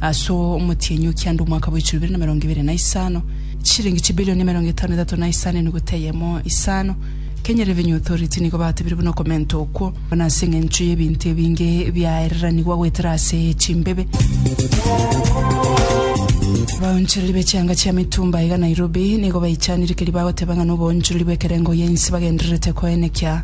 Ase omotienyi o kianda omwaka bwa echiroberio na emerongo ebere na isano, chishilingi chibilioni emerongo etano na etato na isano enuguta eyemo isano, Kenya Revenue Authority nigo batebire buna okomenta okwo, buna ase eng'encho y'ebinto ebinge biaereranigwa goetera ase chimbebe. Abaonchoreri be chianga chia mitumba iga Nairobi nigo baichanire keria bagoteba ng'a noboonchoreri bw'ekerengo y'ense bagendererete koenekia.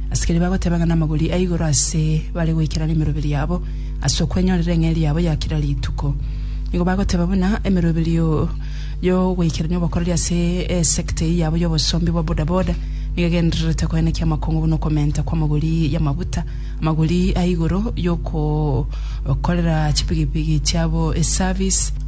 Asikari bagoteba ng'a namagori a igoro ase bare goikera nemeroberi yabo, ase okwenyorera eng'eria yabo ya kera rituko. Nigo bagoteba buna emeroberi yo yogoikerania obokoreri ase esekta eyio yabo y'obosombi bwa boda boda nigo egendererete koenekia amakongo buna okomenta kw'amagori y'amaguta, amagori a igoro y'okokorera chipigipigi chiabo eservice,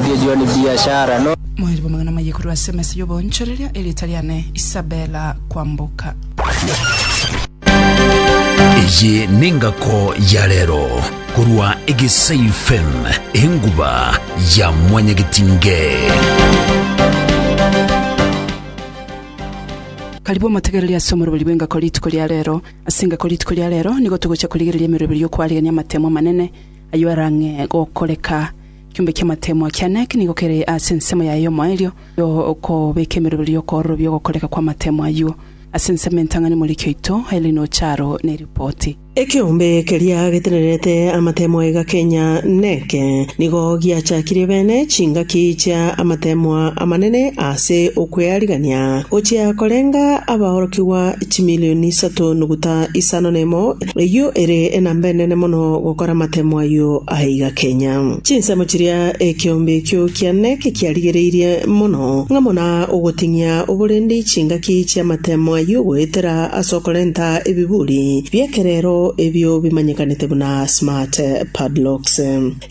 Erio ni biashara no. Mwaribo amang'ana maye korwa ase emesa y'oboonchoreria, erieta riane Isabella Kwamboka. Eye nengako ya rero korwa egesai fm enguba ya mwanyagetinge. Karibu omotegereri ase omoroberi bw'engako rituko ria rero. Ase engako rituko ria rero nigo togochia korigereria emeroberi y'okwarigania amatemo amanene ayio arang'e gokoreka. Ekiombe ki'amatemo akeene eke nigo kere ase ensemo yaye y'omoerio y'okobeka emerobero y'okoororobia ogokoreka kw'amatemo ayio. Ase ensemo entang'ani Omoriki oito Aileen Ocharo neripoti. Ekeombe keria getenerete amatemo aiga kenya neke nigo giachakirie bene chingaki chia amatemo amanene ase okwearigania gochia korenga abaorokigwa chimilioni isato nuguta isano nemo, Eyio ere enamba enene mono gokora amatemo ayio aiga kenya. Chinsemo chiria ekeombe ekio kiane kekiarigereirie mono, ng'a muna ogoting'ia oborendei chingaki chi'amatemo ayio goetera ase okorenta ebiburi bi'ekerero ebio bimanyekanete buna smart padlocks.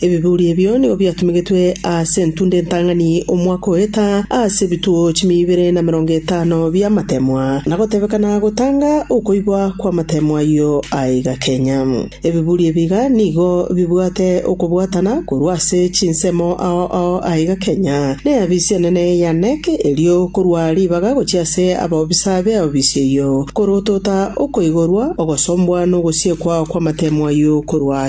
Ebiburi ebio nigo biatumegetwe aase entunda entang'ani omwaka oeta aase ebituo chimia ibere na merongo etano bi'amateemwa, na gotebekana gotanga okoibwa kw'amateemwa ayio aiga kenya. Ebiburi ebiiga nigo bibwate okobwatana korwa ase chinsemo ao ao aiga kenya, n'eafisi enene ya Knec, erio korwa ribaga gochia ase abaobisa b'eofisi eyio, korotota okoigorwa, ogosombwa, n'ogosiekwa kw'amateemwa ayio korwa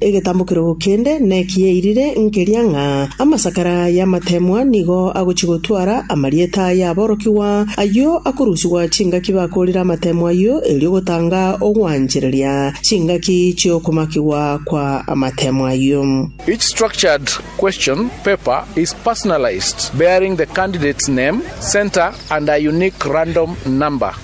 Egetambokero kende nekiyairire nkeria ng'a amasakara y'amateemwa nigo agochia gotwara amarieta y'aborokigwa, ayio akorusigwa chingaki bakoorire amateemwa ayio, erio gotanga ogwanchereria chingaki chi'okomakigwa kwa amateemwa ayio. Each structured question paper is personalized, bearing the candidate's name, centre, and a unique random number.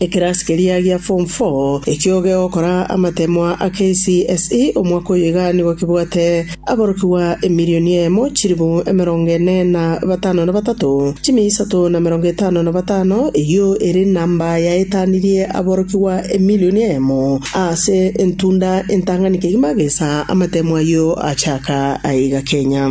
Ekerasi keria gia form four ekio oge ogokora amateemwa a KCSE omwaka oyo iga nigo kebwate aborokigwa emilioni eyemo, chilifu emerongo ene na batano na batato, chimia isato na emerongo etano na batano, eyio ere enamba yaetanirie aborokigwa emilioni eyemo aase entunda entang'ani kegima gesa amateemwa ayio achaaka aiga Kenya.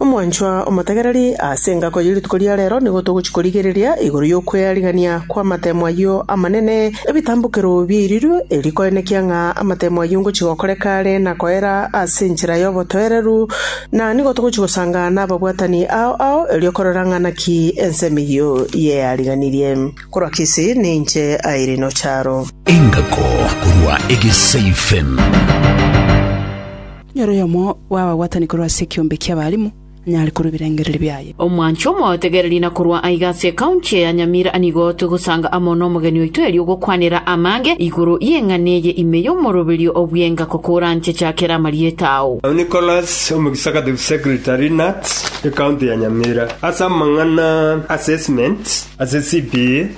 Omwanchwa omotegereri, ase engako ye rituko ria reero nigo togochia korigereria igoro y'okwearigania kw'amatemo ayio amanene, ebitambokero biairiru, erio koenekia ng'a amatemo ayio ngochia gokoreka are na koera ase enchera y'obotoereru, na nigo togochia gosanga nababwatani ao ao, erio korora ng'a naki ensemo eyio yeariganirie. Korwa Kisii, ninche Irene Ocharo. Engako korwa Egesaifem. Nere oyomo bw'abagwatani korwa ase ekiombe ki'abarimu anyare korwa ebirengererio biaye. Omwancho omotegereri na korwa aiga ase ekaunti eye ya Nyamira nigo togosanga amo nomogeni oito erio ogokwanera amange igoro y'eng'ana eye ime y'omoroberio o bwenga kokoranchecha kera amarieta ao. Nicholas, Omogisakative Secretary, NATS, Ekaunti ya Nyamira, ase amang'ana Assessment ase CPA.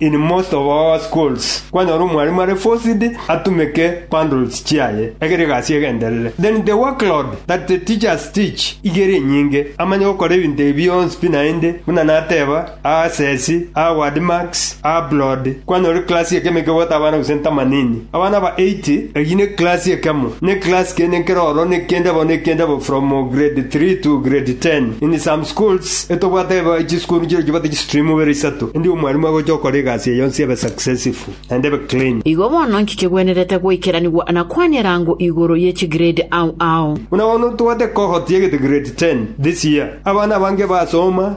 In most of our schools kwanyora omwalimu are forced atumeke bundles chiaye egere egasi egenderere. Then the workload that the teachers teach igere enyinge amanye gokora ebinto ebi bionsi pi naende buna nateba aa sesi aa word marks aa blood kwanyora eclass ekemo ekebwate abana gose ntamanini. Abana aba eight, eyio ne class ekemo, ne class kende nkeroro nekende bo nekende bo from grade three to grade ten. In some schools etobwate eba chisukuru nchire chibwate chistream ibere isato, endi omwalimu agocha okora egasi eye yonsi ebe successful naende ebe clean. Igo bono inche chigwenerete goikeranigwa na kwane erango igoro ye chigrade ao ao. Buna bono tobwate cohort yegete grade ten this year. Abana abange basoma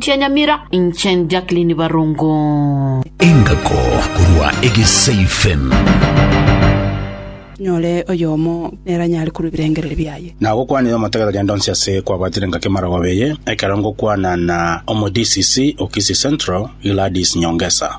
Chia Nyamira, inche Jacqueline Barongo. Engako korwa Egesaifen. Nyore oyomo neranyare korwa ebirengererio biaye. Na gokwanire omotegete genda onsi ase kwabwatire engaki amarogoba eye, ekero ngokwana na omo DCC o Kisii Central, Gladys Nyongesa.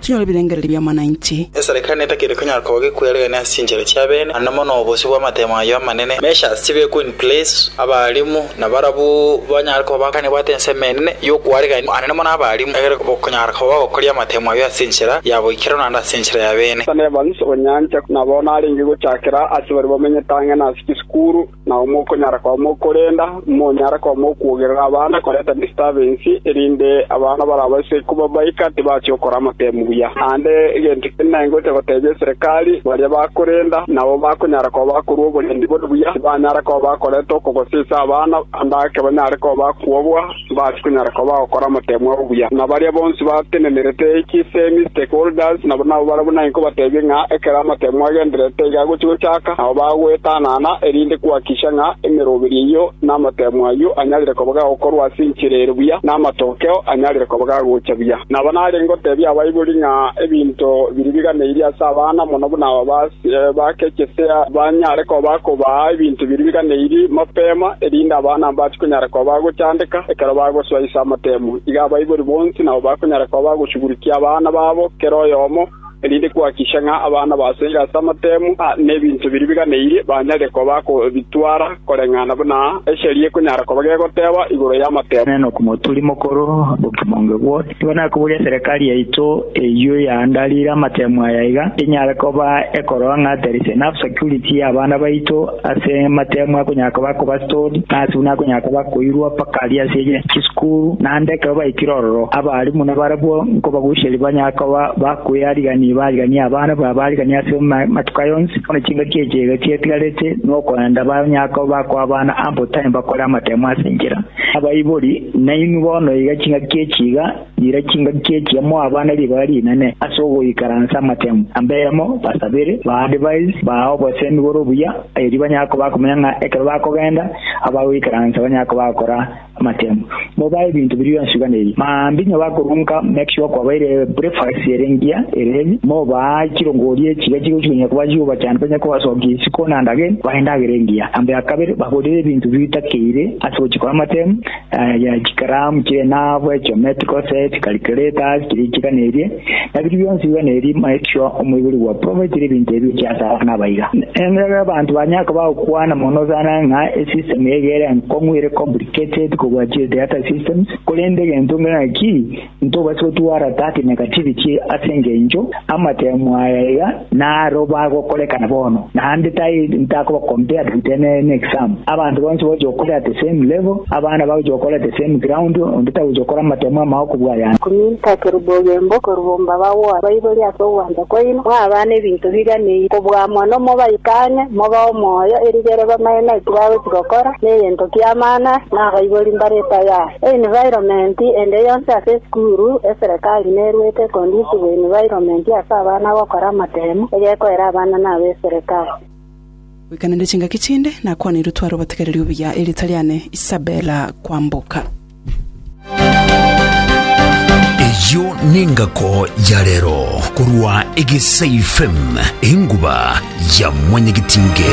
Chinyore ebirengererio bi'amananchi. Esarekano etakiri konyara koba gekweregania ase chinchera chi'abeene, naende mono obosio bw'amatemo ayio amanene. Measures chibekwe in place, abarimu nabarabwo banyare koba bakanebwate ensemo enene y'okwaregania anene mono abarimu, egere bokonyara koba bagokoria amatemo ayio ase enchera ya boikeranu naende ase enchera y'abeene. Ethan Evans, Onyancha, na bono arenge gochakera ase baria bamenyete ang'e na ase chisukuru. Nao mokonyara koba mokorenda, monyare koba mokwogerera abana korenta distabensi, erinde abana barabaise kobabaika tibachia gokora amatemu buya. Naende egento kende naingocha gotebia eserekari, baria bakorenda nabo bakonyara koba bakorua oborendi bore buya, tibanyara koba bakoreta okogosa ase abana, ande ake banyare koba bakwobwa, Mbase konyara koba gokora omoteemwa obuya na baria bonsi batenenerete chisemi, stakeholders, na nabo baria buna inko bateebie ng'a ekero omoteemwa agendererete iga agochia gochaaka, nabo bagwetanana erinde kuhakikisha ng'a emeroberi eyio n'amoteemwa ayio anyarire koba gagokorwa ase enchera ere buya, na amatokeo anyarire koba gagocha buya. Nabo nare ngoteebie abaibori ng'a ebinto biria biganeirie ase abana, mono buna aba, Nebake chisea banyare koba kobaa ebinto biriganeiri mapema, erinde abana mbache konyara koba agochandeka ekero bagosoa ase amatemo. Iga abaibori bonsi nao bakonyara koba agoshugurikia abana babo kera oyomo, erinde kwakikisha ng'a abana basoire ase amatemo, na ebinto biriganeiri banyare koba akobitwara koreng'ana buna esheria ekonyara koba gegoteba igoro y'amatemo. Inee nokomoturi mokoro bokimonge bw'oyo? Nigo nakoboria eserekari yaito eyio yaandarire amatemo aya iga enyare koba ekorora ng'a ther'ise enough security y'abana baito ase amatemo akonyara koba akoba stored, naase buna akonyara koba akoirwa mpaka aria ase chisukuru, naende ekero baikire ororo abalimu nabarabwo nkobagucheria banyare koba bakoearigania bariganie abana babo bariganie ase amatuko aya onsi bono chingaki echi iga chiatigarete nokorenda banyare koba bakoa abana ample time bakore amatemo ase enchera. Abaibori. Nainwe bono iga chingaki echi iga nira chingaki echi amo abana ribaga rinene ase ogoikaransa amatemo, ambemo, basabere, baadvise, baa obosemi bore obuya, erio banyare koba bakomanya ng'a ekero bakogenda abagoikaransa banyare koba bagokora amatemo. Mobae ebinto biria bionsi biganeirie. Maambia onye bakorwa nka make sure kwabaire breakfast ere engiya ere heavy, mobaa chirongori echi iga chigochi konya koba chigobachanda banyare kobasokia isiko naende again bae endagera engiya. Amba ya kabere, baborere ebinto bitakeire, Ase ogochia kw'amate aya chikaramu chi'enabu, echometi, gose chikalikuretasi chiria chiganerie, na biria bionsi biganerie Melkio, omoibori bwa provaitire ebinto ebio chi'ase abana abaiga. Emerero y'abanto banya koba gokwana mono sana ng'a esystem eye ere enkong'u, ere complicated kobua chiri theatre systems, korende egento ng'a ki, Ntobasa gotwara thirty negativity ase engencho amatemo aya iga naro bagokorekana bono, naende tai ntakoba compared with any any exam. Abanto bonsi bagochia gokora at the same level, abana bagochia gokora at the same ground, onde tagochia gokora amatemo amao kobua ayande. Kominta kerube ogembo korwa omba bagwore baibori ase ogwancha kwaino, mwabana ebinto biganeire, kobua amo nomo baikane, mobe omoyo, erigere bamanye naki bagochia gokora, negento ki'amana ase nabaibori mbare tayari. Environment ende yonsi ase esukuru, eserekari neruete econducive environment ase abana gokora amatemu, egekoera abana na aba eserekari. Goikanende chingaki chinde nakwaneirwe tware obatigereri obuya erieta riane Isabella Kwamboka. Eyio nengako ya rero korwa Egesaifm enguba ya mwanyagetinge.